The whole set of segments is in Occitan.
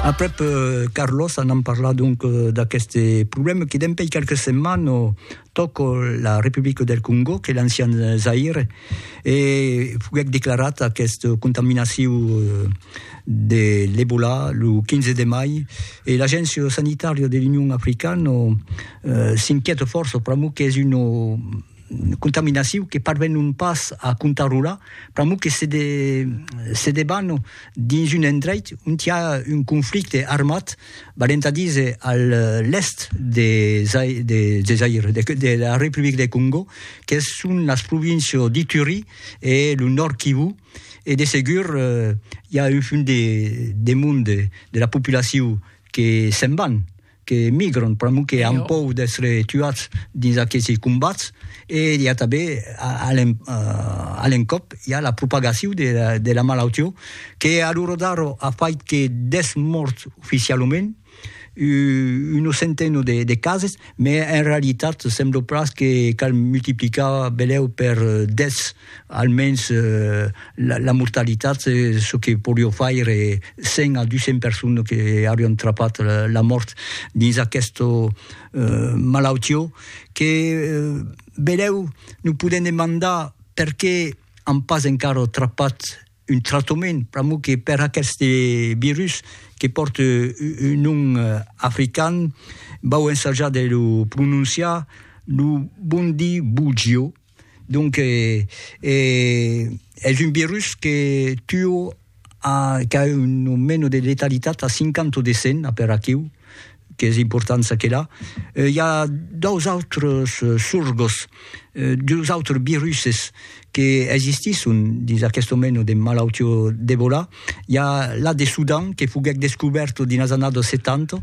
Aprèp Carlos anam parlar donc d'aqueste problèma que dempèi qualques setmanes tòc la Republica del Congò, qu'es l'ancian Zaïre, e foguèc declarat aquesta contaminacion de l'Ebola lo 15 de mai, e l'Agéncia Sanitària de l'Union Africana s'inquièta fòrça pr'amor qu'es una contaminaciu que parvenon pas a contarrolar, pr'amor que se se deban dins un endreit ont i a un conflicte armat, valent a díser a l'èst de Zaï de de Zaïre, de de la Republic de Còngo, que son las províncias d'Ituri e lo Nòrd Kivu, e de segur i a un fum de de monde de la populaciu que se'n van. que emigran pr'amor que an pòur d'èstre tuats dins aquesi combats e i a tanben a l'encòp i a la propagacion de la malaution que a l'ora d'ara a fait que 10 mòrts oficialament una centena de cases, mès en realitat sembla pas que cal multiplicar benlèu per 10 Almens la mortalitat, çò que podió faire 100 a 200 personnes que aurián trapat la mòrt dins aquesta malautió que, vedèu, nos podèm demandar perqué an pas encara trapat un tractament, pr'amor que per aqueste virus que pòrte un nom african, vau ensajar de lo prononciar, lo bundibugyo. Donc es un virus que tuo qu'a un nomeno de letalitat a 50 o de 100 per aquiu qu'es important saquela. I a dos autres sorgos, dus autres viruses que existisson dins aqueste nomeno de malautiá d'Ebola. I a la de Sudan que foguèc descubèrta dins las annadas 70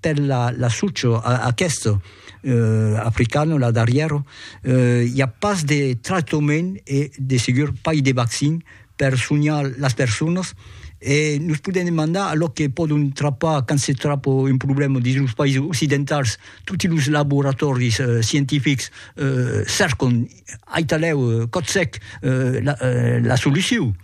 per la la sucho a aquesto euh africano la darrièro euh i a pas de tractament e de segur pas de vaccin per sonhar las personas e nos podèm demandar a lo que pòdon trapar quand se trapa un problèma dins los païses occidentals toti los laboratòris scientifics euh cercon aitalèu còth sec la solucion.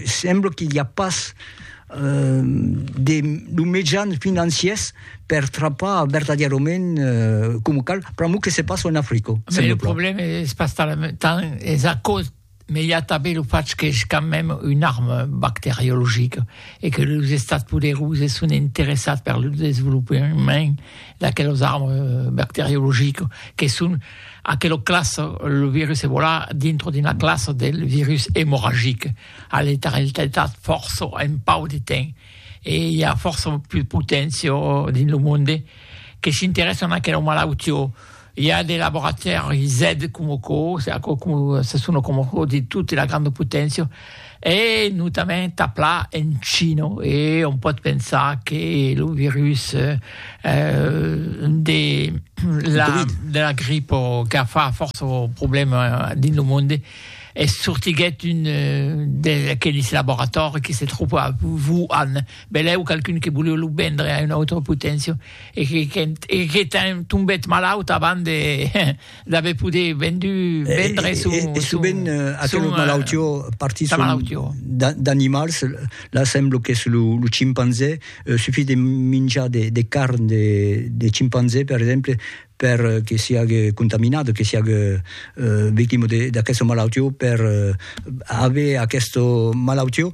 sembla que i a pas euh, de lo mejan financiers per trapar vertadièrament euh, com cal, pramo que se passa en Africa. Mais le problème es pas tant, es a cause mais il y a també le fait que és quand même une arme bactériologique et que les estats poderous sont intéressés par le développement d'aquelles armes euh, bactériologiques qui sont Aquelo clas, lo virus Ebola dintro d'una classa del virus emorragic, a letaralitat fòrça en pauc de temps e i a fòrça plus poténcia dins lo monde que s'interèssan a aquelo malautió. I a de laboratèris, zèd, coma aquò, se aquò se sona coma aquò dins tota la granda poténcia. e notament a pla en China, e on pòt pensar que lo virus de la de la grip qu'a fa fòrça problèma dins lo monde es sortiguèt un d'aqueles laboratòris que se tròba a Wuhan, benlèu qualqu'un que voliá lo vendre a una autra poténcia e que qu'es tombèt malaut abans de L'ave poder vendu, vendre son... E sovent aqueles malautió partis d'animals, la semblo qu'es lo chimpanzé, sufís de minjar de carn de chimpanzé, per exemple, per que siague contaminat, que siague victima d'aquesta malautió, per aver aquesta malautió.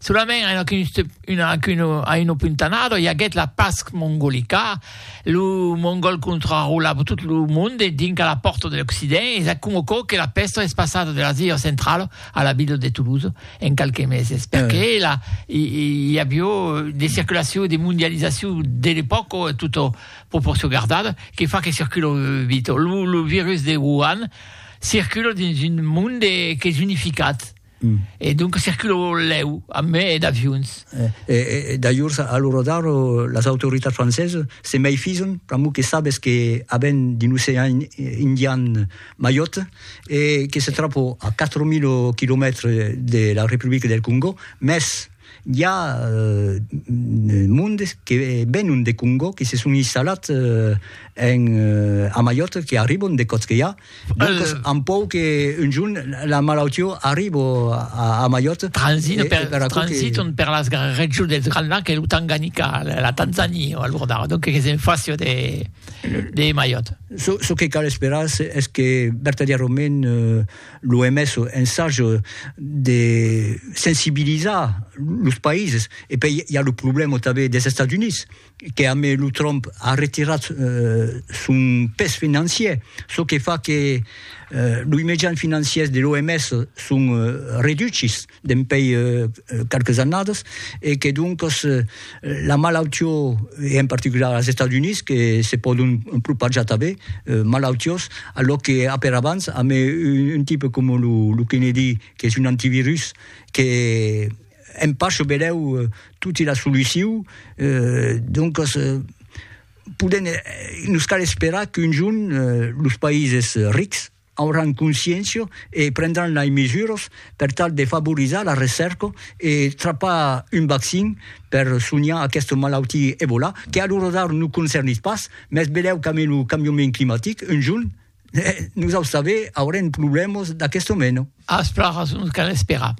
Solament a una, a una puntanada i aguèt la pasc mongolica, lo mongòl contrarolava tot lo monde dinc a la pòrta de l'Occident e s'acum o cò que la pèsta es passada de l'Asia centrala a la vila de Toulouse en qualques meses, perque la i avió de circulacion, de mondializacion de l'epòca, tota proporcion gardada, que fa que circula vit. Lo virus de Wuhan circula dins un monde qu'es unificat. E donc circulou lèu a mai d'avions. E dajors a lo radar las autoritats francesas se meifison pr'amor que sabes que a ven de l'ocean indian Mayotte e que se trapò a 4000 quilomètres de la Republica del Congò, mès I a mondes que venon de Congó, que se son installats en a Mallorca, que arribon de còps que i a, doncas an paur que un jorn la malautiá arribo a Mallorca. Transitan per, transitan per las regions dels Grands Lacs e lo Tanganica, la Tanzania a l'ur d'ara, doncas que se n'fasió de de Mallorca. Çò que cal esperar es que vertadièrament L'OMS ensage de sensibilizar los païses. E pei i a lo problèma tanben des Estats Units, que a mai lo Trump a retirat son pes financier, çò que fa que los mejans financiers de l'OMS son reduchis. dempèi qualques annadas e que doncas la malautió e en particular als Estats Units que se pòdon propajar tanben malautiós a lo que a per abans amb un tipe coma lo Kennedy qu'es un antivirus que en pacho belèu toti la solucion doncas podèm nos cal esperar qu'un jorn los païses rics auràn consciéncia e prendràn lei mesuras per tal de favorizar la recèrca e trapar un vaccin per sonhar aquesta malautia Ebola, que a l'ora d'ara nos concernís pas, mès velèu qu'amé lo cambiament climatic, un jorn, nosaus tanben aurem problèmas d'aquesta mena. As plan rason, cal esperar.